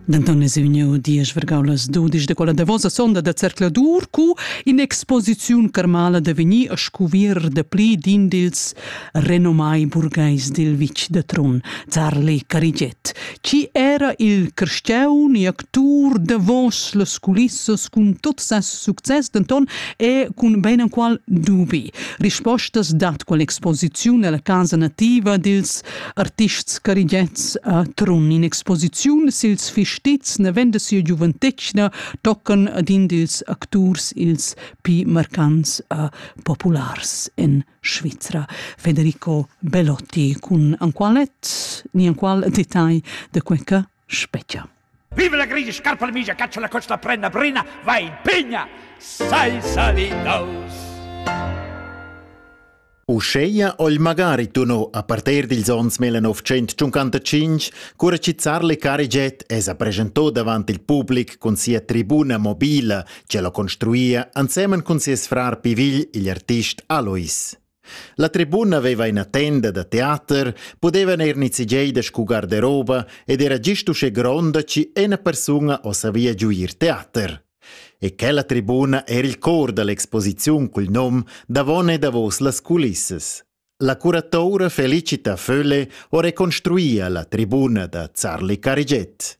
Denton es vegniu diesch vargau las dudisch de quella davosa sonda da zercladur cu in'exposiziun carmala da vegnir a scuvir de pli d'in dils renomai burgheis dil vitg de Trun, Zarli Carigiet. Ci era il crestiaun e actur davos las culissas cun tot ses success, denton e cun ben enqual dubi. Rispostas dat quell'exposiziun ella casa nativa dils Artists carigets a Trun in exposiziun sils fistizs ne vende sia giuventetgna toccan ad in dils acturs ils pi marcants a populars en Svizra, Federico Belotti, cun an qualet ni an qual detagl de quei che Spetga. Viva la grigia scarpa la migia, caccia la coccia, la prenda brina, vai, pigna, sai salidaus. Uscheia ogl magari tuno a parter dils ons 1955, cura chi zar Le Cariget es a presentò davant il public cun sia tribuna mobila, che lo construia ansemen cun sies frar Pivigl igl artist Alois. La tribuna veva ina tenda da teater, pudevan er nizigei da scu garderoba ed era gist uschè gronda chi ena persuna o savia giuir teater. E quella tribuna era il cor dall'exposiziun cul nom Davon e davos las culissas. La curatura Felicita Fölle ho reconstruia la tribuna da Zarli Cariget.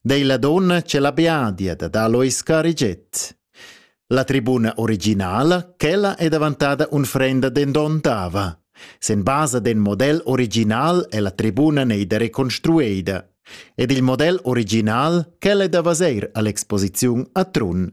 dei la donna che la beadia da Alois cariget. La tribuna originala, quella è davantada unfrenda dendontava. Sen basa den model original è la tribuna neida reconstrueida. Ed il model original, quella è da vaseir all'exposiziun a Trun.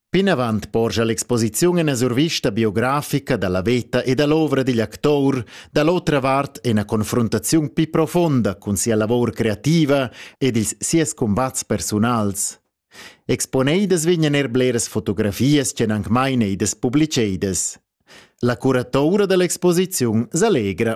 Plinavant porscha l'exposiziun ina survista biografica da la veta e da l'ovra digl actur, da l'otra vart ina confruntaziun pli profonda cun sia lavor creativa ed ils sies cumbats persunals. Exponeidas vegnan er bleras fotografias ch'en anc mai neidas publicedas. La curatura da l'exposiziun s'allegra.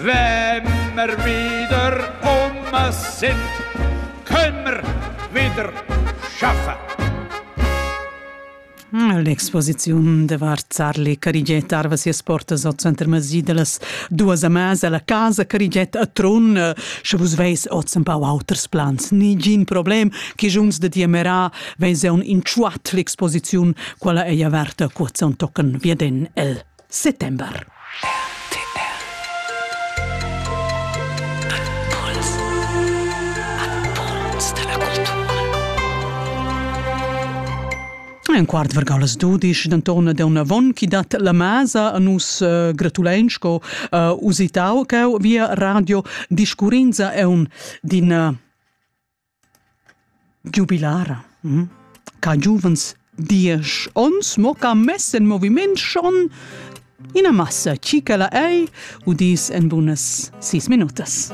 Vemmer wieder Oma sind, können wieder schaffen. L'exposiziun de var Zarli Carigiet arva sias portas al center Masi de las duas amas alla casa Carigiet a Trun. Sche vus veis oz un pau auters plans, nigin problem, che junts de diamera veis un in tschuat l'exposiziun, quala ei averta, cuazza un tocken via den el. settember. Un quart vargau las dudisch, denton da unavon chi dat la masa a nus uh, gratulein sco uh, usitau cheu via radio discurrinza e un d'in uh, Giubilara. Hm? Ca giuvens diesch ons mo ca mess in moviment schon ina massa chi ch'ella ei udis en bunas sis minutas.